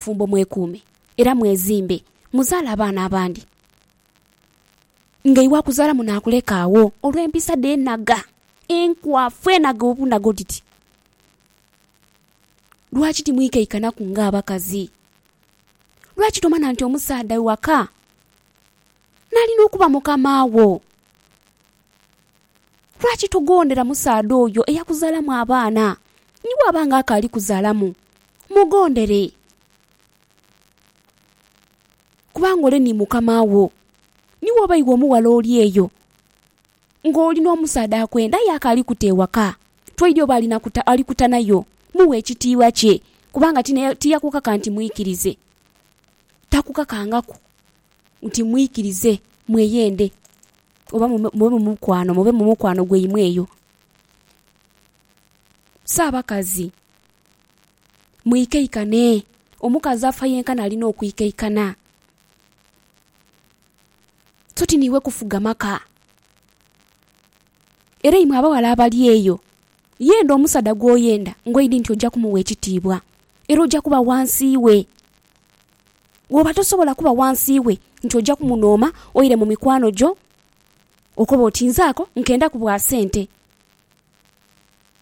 Bafumbo mwekuume era mwezimbe, muzaale abaana abandi nga iwe akuzaala munaakuleka agho olw'empisa dhe enhaga, enkwafu, enhaga obunhaga otiti. Lwaki timwikaikanaku ng'abakazi? Lwaki tomanha nti omusaadha waka n'alina okuba mukama wo? Lwaki togondera musaadha oyo eyakuzaalamu abaana, ni bw'aba ng'akaali kuzaalamu? Mugondere, kubanga ole ni mukama wo. Ni bw'oba iwe omughala oli eyo, ng'oli n'omusaadha akwenda aye akaali kuta ewaka, twaidhi oba ali kuta nayo, mughe ekitiibwa kye, kubanga tiyakukaka nti mwikirize, takukakangaku. Nti mwikirize, mweyende, oba mube mu mukwano, mube mu mukwano gwaimwe eyo. So abakazi, mwikaikane. Omukazi afa yenkana alina okwikaikana. So ti niiwe kufuga maka. Era imwe abaghala abali eyo, yenda omusaadha gw'oyenda ng'oidhi nti oja kumuwa ekitiibwa era oja kuba wansi we. Woba tosobola kuba wansi we nti oja kumunooma oire mu mikwano gyo okobe oti nze ako nkendaku bwa sente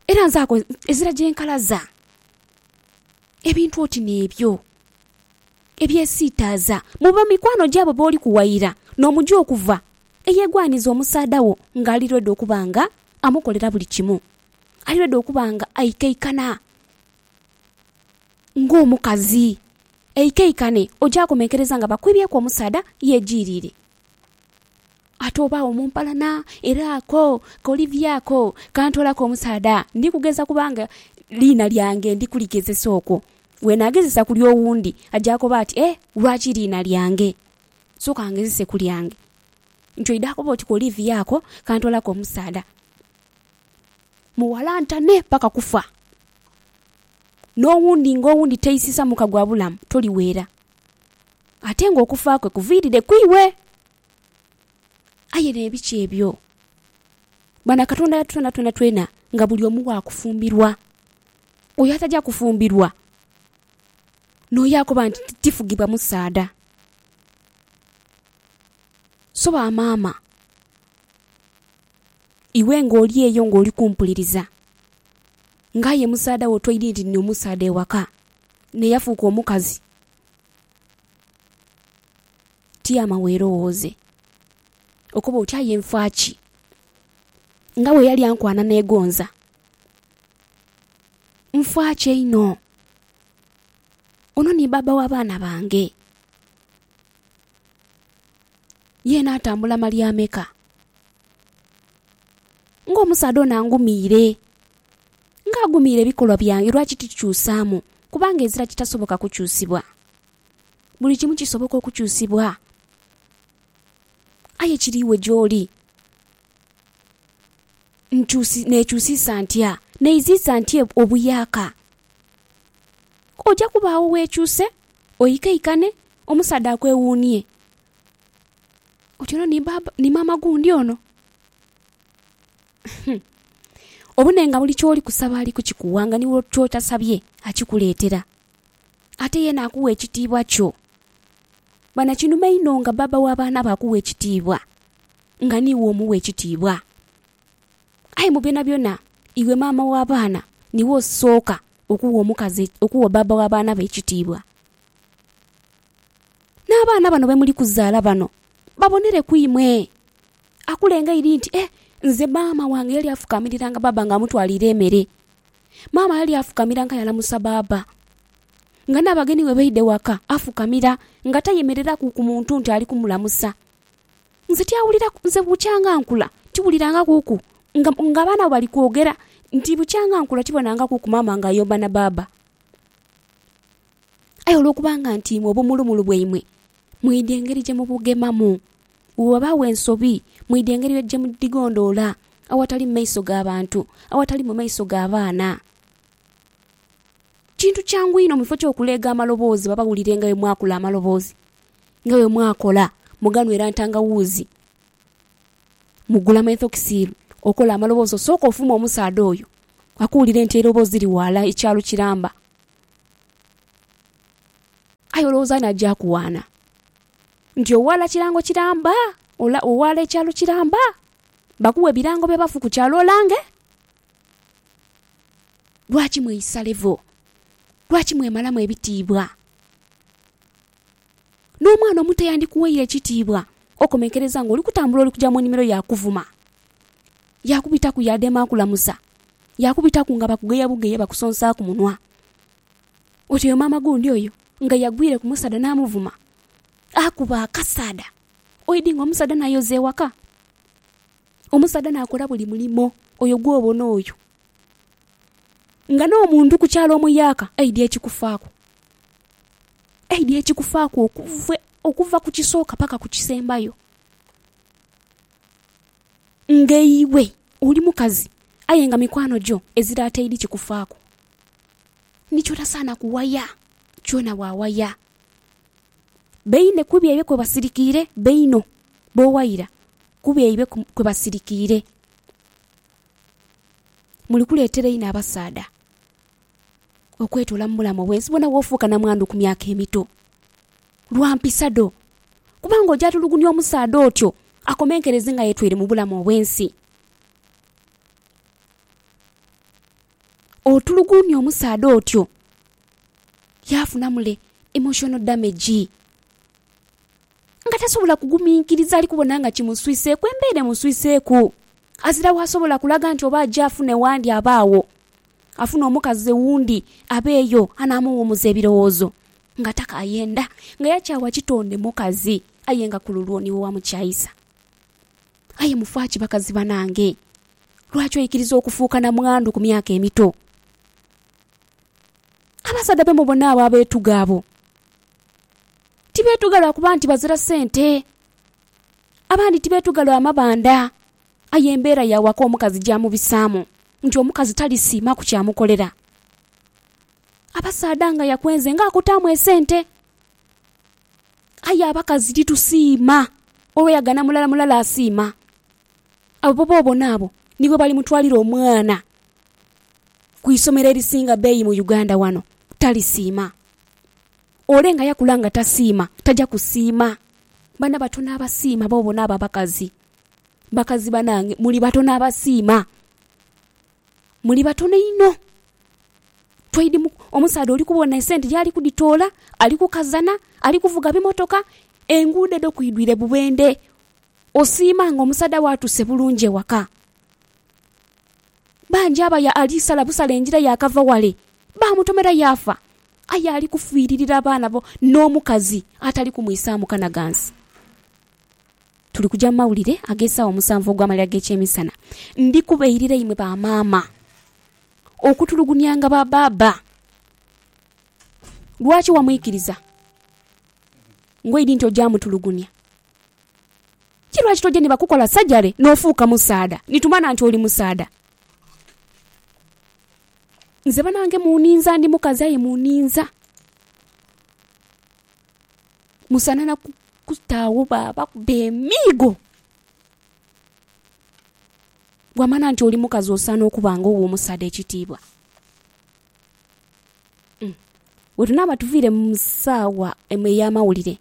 era nze ako ezira gyenkalaza. Ebintu oti nebyo ebyesiitaaza mu bamikwano gyo abo boli kuwaira nomuja okuva eyegwaniza omusaadha wo nga ali ready okuba nga amukolera buli kimu, ali ready okuba nga aikaikana. ng'omukazi. Eikaikane, oja komenkereza nga bakwibyeku omusaadha yejiirire. Ate oba agho mu mpalana, era ako ka Olivia ako kantoolaku omusaadha. Ndi kugeza kubanga liina lyange ndi kuligezesa okwo. Bw'enaagezesa ku ly'owundi, aja koba ati, Eh, lwaki liina lyange? Sooka ngezese ku lyange. Ntyo oidha koba oti ka Olivia ako kantoolaku omusaadha. Muwalantane paka kufa. N'owundi ng'owundi teisisa muka gwa bulamu, toliweera. Ate ng'okufa kwe kuviirire ku iwe. Aye n'ebiki ebyo? Bwana Katonda yatutonda twenatwena nga buli omu wa kufumbirwa. Oyo ataja kufumbirwa, n'oyo akoba nti tifugibwa musaadha. So bamaama, Iwe ng'oli eyo ng'oli kumpuliriza, ng'aye musaadha wo twidhi nti ni omusaadha ewaka, naye yafuuka omukazi. Tyama weerowooze. Okoba oti, Aye nfa ki? Nga bwe yali ankwana neegonza. Nfa ki einho? Ono ni baaba w'abaana bange. Ye naatambula malyameka ng'omusaadha ono angumiire, ng'agumiire ebikolwa byange, lwaki tikyusaamu? Kubanga ezira kitasoboka kukyusibwa. Buli kimu kisoboka okukyusibwa, aye kiri iwe gy'oli. nkyusi, neekyusiisa ntya, neiziisa ntya obuyaaka. Oja kuba agho weekyuse, oikaikane, omusaadha akwewuunie oti, Ono ni baaba, ni maama gundi ono? Hum! Obone nga buli ky'oli kusaba ali kukikuwa nga ni ky'otasabye akikuleetera. Ate ye naakugha ekitiibwa kyo. Bana, kinuma inho nga baaba w'abaana bo akuwa ekitiibwa! nga niiwe omuwa ekitiibwa. Aye mu byonabyona, iwe maama w'abaana niiwe osooka okuwa omukazi, okuwa bbaabba w'abaana bo ekitiibwa. N'abaana bano be muli kuzaala bano babonere ku imwe. Akule nga aidhi nti, Eh, nze maama wange yali afukamiriranga bbaabba ng'amutwaliire emere. Maama yali afukamiranga yalamusa bbaabba. Nga n'abagenighe baidha ewaka, afukamira nga tayemereraku ku muntu nti ali kumulamusa. Nze tyawulira, nze bukyanga nkula tiwuliranga kuku nga nga abaana bwe bali kwogera nti bukyanga nkula tibonanga kuku maama nga ayomba na baaba. Aye olwokubanga nti imwe obumulumulu bwaimwe mwidha engeri gye mubugemamu, bwe ghabaagho ensobi mwidha engeri gye mudhigondoola awatali mu maiso ga bantu, awatali mu maiso ga baana. Kintu kyangu inho mu kifo ky'okuleega amaloboozi babawulirenga bwe mwakula amaloboozi Nga bwe mwakola, muganhwera ntangawuuzi, mugula menthokisiiru, okola amaloboozi osooke ofume omusaadha oyo akuwulire nti eiroboozi liri ghala ekyalo kiramba. Aye olowooza ani aja kuwaana nti owaala kirango kiramba? Ola, owaala ekyalo kiramba? Bakuwe ebirango by'abafu ku kyalo olange? Lwaki mweisa levo? Lwaki mwemalamu ebitiibwa? N'omwana omuto yandikuweire kitiibwa. Okomenkereza ng'oli kutambula oli kuja mu nimiro yaakuvuma. Yaakubitaku yaadema akulamusa. Yaakubitaku nga bakugeya bugeya bakusonsa ku munwa. Oti oyo maama gundi oyo nga yagwire ku musaadha n'amuvuma. Akuba akasaadha. Oidhi ng'omusaadha n'ayoza ewaka. Omusaadha n'akola buli mulimo oyo gw'obona oyo. Nga n'omuntu ku kyalo omuyaaka aidhi ekikufaaku. Aidha ekikufaaku okuva ku kisooka paka ku kisembayo. Nga iwe oli mukazi aye nga mikwano gyo ezira ataidhi kikufaaku, ni kyotasaana kuwaya kyona waawaya. Baine ku byaibwe kwe basirikiire, baino b'owaira ku byaibwe kwe basirikiire. Muli kuleetera inho abasaadha. okwetoola mu bulamu obw'ensi bwona bw'ofuuka namwandu ku myaka emito. Lwa mpisa dho. Kubanga oja tulugunya omusaadha otyo akomenkereze nga yetwire mu bulamu obw'ensi. Otulugunya omusaadha otyo yaafuna mule emotional damage nga tasobola kuguminkiriza ali kubona nga kimuswiseeku, embeera emuswiseeku. Azira w'asobola kulaga nti oba aje afune w'andi aba agho. Afune omukazi owundi abe eyo anaamuwumuza ebirowoozo nga takaayenda, nga yakyawa kitonde mukazi aye nga ku lulwo niwe wamukyaisa. Aye mufa ki bakazi banange? Lwaki oikiriza okufuuka na mwandu ku myaka emito? Abasaadha be mubona abo abeetuga abo, tibeetuga lwa kuba nti bazira sente. Abandi tibeetuga lwa mabanda, Aye embeera ya waka omukazi gyamubisaamu nti omukazi talisiima ku kyamukolera. Abasaadha nga yakwenze nga akutaamu esente. Aye abakazi titusiima olwo yagana mulala mulala asiima. Abo b'obona abo nibo balimutwalira omwana ku isomero erisinga beeyi mu Uganda wano. Talisiima. Ole nga yakula nga tasiima taja kusiima. Bano batono abasiima b'obona abo abakazi. Bakazi banange muli batono abasiima, muli batono inho. Omusaadha oli kubona esente yaali kudhitoola, ali kukazana, ali kuvuga bimotoka, enguudo edho kwidhwire bubendhe. Osiima nga omusaadha wo atuuse bulungi ewaka. Bangi abo ali sala busale engira yaakava ghale, baamutomera yaafa. Aye ali kufiiririra abaana n'omukazi atali kumwisaamu kanaghansi. Tuli kuja mu mawulire ag'esaawa omusanvu ogw'amalira g'ekyemisana. Ndi kubairira imwe ba maama okutulugunyanga ba baaba. Lwaki wamwikiriza ngoidi nti oja mutulugunya? Ki lwaki toja ni bakukola sajale n'ofuuka musaadha ni tumana nti oli musaadha? Nze banange muninza, ndi mukazi aye muninza. Musanha na kuta agho baabakuba emiigo. Bw'amanha nti oli mukazi osaana okuba nga owa omusaadha ekitiibwa. Bwe tunaaba tuviire mu saawa emu ey'amawulire,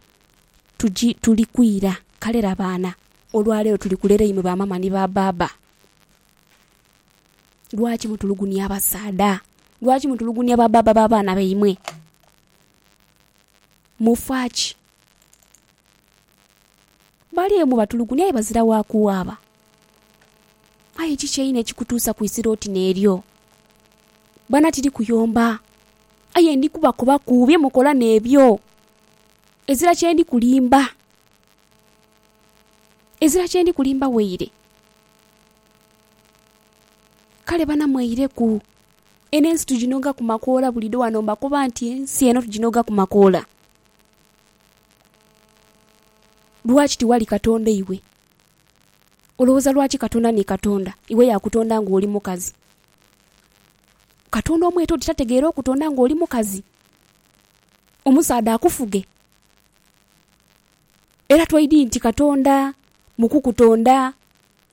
tugi, tuli kwira. Kale laba ana, olwa leero tuli kulera imwe bamaama ni babbaabba. Lwaki mutulugunia abasaadha? Lwaki mutulugunia babbaabba b'abaana baimwe? mufa ki? Bali eyo mubatulugunya aye bazira wa kuwaaba. Aye kiki einho ekikutuusa ku isiro oti n'eryo? Bana tiri kuyomba, aye ndi kubakobaku bye mukola n'ebyo. Ezira kye ndi kulimba, ezira kye ndi kulimba waire. Kale bana mweireku Eno ensi tuginhogaku makoola buliidho ghano mbakoba nti ensi eno tuginhogaku makoola. Lwaki tiwali Katonda iwe? Olowooza lwaki Katonda ni Katonda? Iwe yakutonda nga oli mukazi. Katonda omwete oti tategeera okutonda nga oli mukazi? Omusaadha akufuge? Era twaidhi nti Katonda mu kukutonda